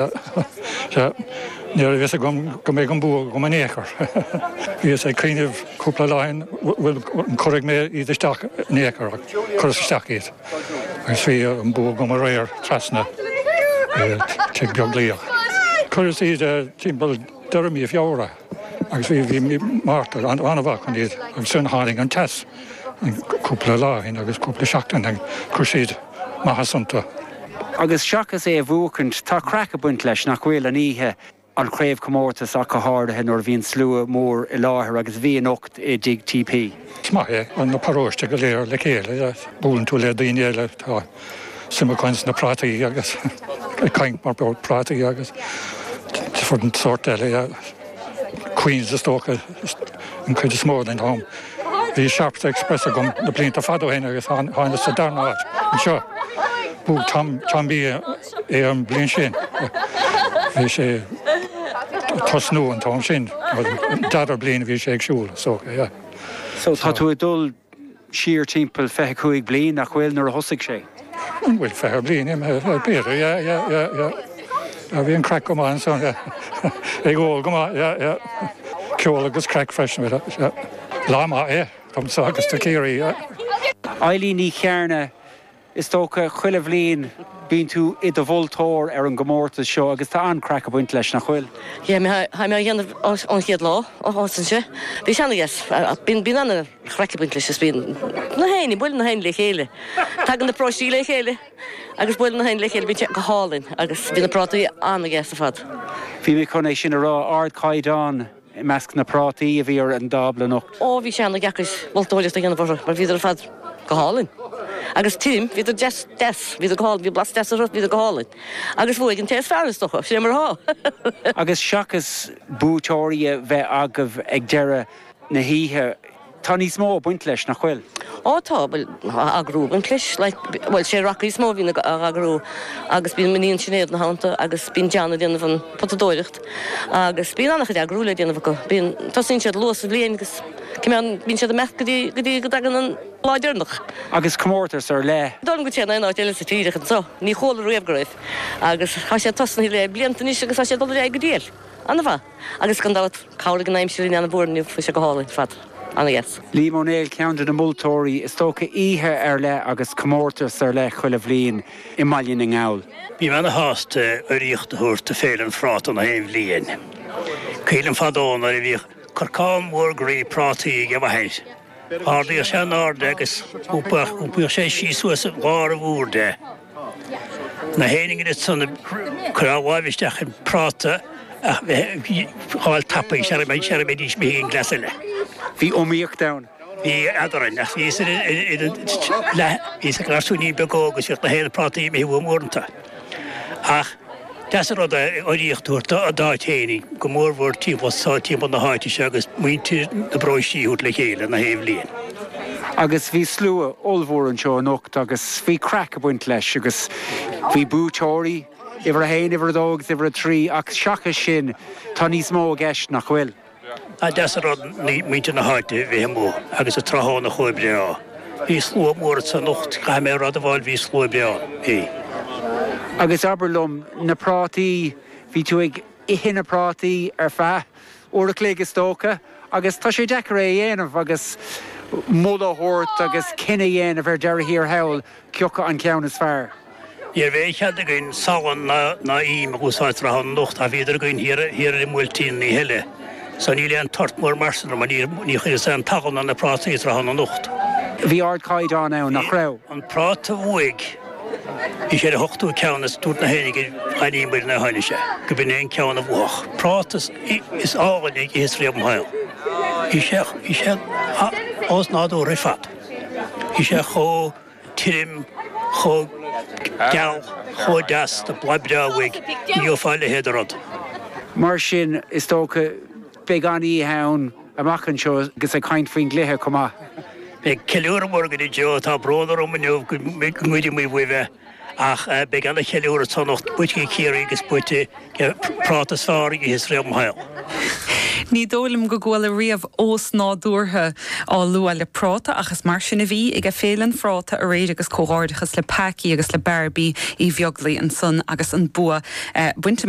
Sea, ní raibh a fhios agam go mbeidh an bua agam in aon chor. Bhíos ag cuimhneamh cúpla lá ó shin bhuel an gcuirfidh mé iad isteach in aon chor ach chuireas isteach iad agus bhí an bua agam aréir trasna Tigh Beaglaoich. Chuireas iad timpeall deireadh mí Feabhra agus bhí bhí mí Márta ana-mhaith chun iad agus ansan tháinig an teas an cúpla lá ó shin agus cúpla seachtain, chuir siad maitheas iontu. Agus seachas é a bhuacaint, tá craic ag baint leis, nach bhfuil, an oíche, an craobhchomórtas ach go háirithe nuair a bhíonn slua mór i láthair agus bhí anocht i dTigh TP. Is maith é na paróistí go léir le chéile buaileann tú le daoine eile tá suim acu ins na prátaí agus ag caint mar gheall ar prátaí agus different sórt eile a Queens is dócha an chuid is mó den am. Bhí Sharpe's Express agam na blianta fada ó shin agus tháinig sé darna áit anseo. Bhuaigh Tom Tom Bee é an bhliain sin. Bhí sé ag tosnú an t-am sin, dara bliain a bhí sé ar siúl so yeah. So tá tú ag dul siar timpeall 25 bliain nach bhfuil nuair a thosaigh sé? An bhfuil 20 bliain imithe aige yeah yeah yeah yeah bhí an craic go maith ansan yeah ag ól go maith yeah yeah ceol agus craic freisin bhfuil a yeah lá maith é domsa agus do Chiarraí yeah. Eileen Ní Chearna Is dócha, chuile bhliain bíonn tú i do mholtóir ar an gcomórtas seo agus tá an-craic ag baint leis, nach bhfuil? Yeah, tá mé á dhéanamh ón chéad lá a thosaigh sé. Bhí sé ana-dheas. Bíonn an-chraic ag baint leis is bíonn na héinne, buaileann na héinne le chéile. Tagann na paróistí le chéile agus buaileann na héinne le chéile, bíonn sé go hálainn agus bíonn na prátaí ana-dheas ar fad. Bhí mé chun é sin a rá, ardchaighdeán. I measc na bprátaí a bhí ar an dtábla anocht. Ó, bhí sé an-deacair moltóireacht a dhéanamh orthu mar bhíodar ar fad go hálainn. Agus tirim, bhíodar deas, deas, bhíodar go hálainn, bhí blas deas orthu, bhíodar go hálainn. Agus bhuaigh an té is fearr, is dócha, sin é mar atá. Agus seachas buaiteoirí a bheith agaibh ag deireadh na hoíche, Tá níos mó ag baint leis, nach bhfuil? Á, tá, bhuel, á eagrú an clis, like, bhuel, sé raca is mó a bhíonn ag eagrú agus bíonn m'iníon Sinéad ina theannta agus bíonn John ag déanamh an potadóireacht agus bíonn an-chuid eagrú le déanamh acu. Bíonn, tosaíonn siad luath sa bhliain agus cimeád, bíonn siad ag imeacht go dtí, go dtí go dtagann an lá deireanach. Agus comórtas ar leith? Don go téann aon áit eile sa tír ach anseo, ní chuala riamh go raibh agus tá sé tosnaithe le blianta anois agus tá sé ag dul ar aghaidh go diail. Ana-mhaith. Agus gan dabht, chabhraigh an aimsir linn ana-mhór inniu, bhí sé go hálainn ar fad, ana-dheas. Liam Ó Néill ceann de na moltóirí is dócha oíche ar leith agus comórtas ar leith chuile bhliain i mBaile na nGall. Bím ana-shásta urraíocht a thabhairt d'Fhéile an Phráta na haon bhliain. Cuimhin liom fadó nuair a bhíodh corcán mór groí prátaí aige mo mháthair. Ardaíodh sé in airde agus thugadh sé síos suas i lár an bhúird é. Na héin iad san a chuirfeadh láimh isteach i bpráta ach bheith ag fáil tapaidh, sea, bheadh siad ag ithe an gcleas eile. Bhí iomaíocht ann. Bhí, fheadar an, ach bhí, bhí sé ina gharsúinín beag óg agus bhíodh na héin ag prátaí a ithe uaidh uaireanta. Nach deas an rud é urraíocht a thabhairt d'aon ní, go mórmhór timpeall so, timpeall na háite seo agus muintir na bparóistí a thabhairt le chéile na haon bhliain. Agus bhí slua ollmhór anseo anocht agus bhí craic ag baint leis agus bhí buaiteoirí, uimhir a haon, uimhir a dó agus uimhir a trí ach seachas sin tá níos mó i gceist, nach bhfuil? Nach deas an rud muintir na háite a bheith amuigh agus an tráthnóna chomh breá. Bhí slua mór anso anocht, caithfidh mé a rá. Ó bhuel bhí slua breá ann. Agus abair liom, na prátaí, bhí tú ag ithe na prátaí ar feadh uair a chloig is dócha agus tá sé deacair é a dhéanamh agus moladh a thabhairt agus cinneadh a dhéanamh ar deireadh thiar thall Cioca an ceann is fearr? Ní raibh aon chead againn salann ná ím a úsáid tráthnóna anocht ach bhíodar againn thiar i mBuailtín an oíche eile. So níl aon tart mór ormsa anocht mar ní chuireas aon tsalann ar na prátaí tráthnóna anocht. Bhí ardchaighdeán ann, nach raibh? An práta a bhuaigh, bhí sé ar an hochtú ceann is dúirt na h-Éireannaigh gur an neomat a tháinig sé, gur b'in é an ceann a bhuafadh. Práta is fearr a dh'itheas riamh im shaol. Bhí sé osnádúrtha ar fad. Bhí sé chomh tirim, chomh geal, chomh deas blasta, ní gheofá a leithéid de rud. Mar sin, is dócha, beidh an-oíche ann amach anseo agus ag caint faoin gcluiche chomh maith. Beidh ceiliúradh mór againn inniu, tá brón orm inniu go ngoidfimid faoi bheith. Ach beidh ana cheiliúradh anso anocht buaite ag Ciarraí agus buaite le práta is fearr a dh'itheas riamh im shaol. Ní dóigh liom go gcuala riamh osnádúrtha á lua le práta ach is mar sin a bhí ag Féile an Phráta aréir agus comhghairdeachas le Packie agus le Barbie Uí Bheaglaoi ansan agus an bua bainte amach.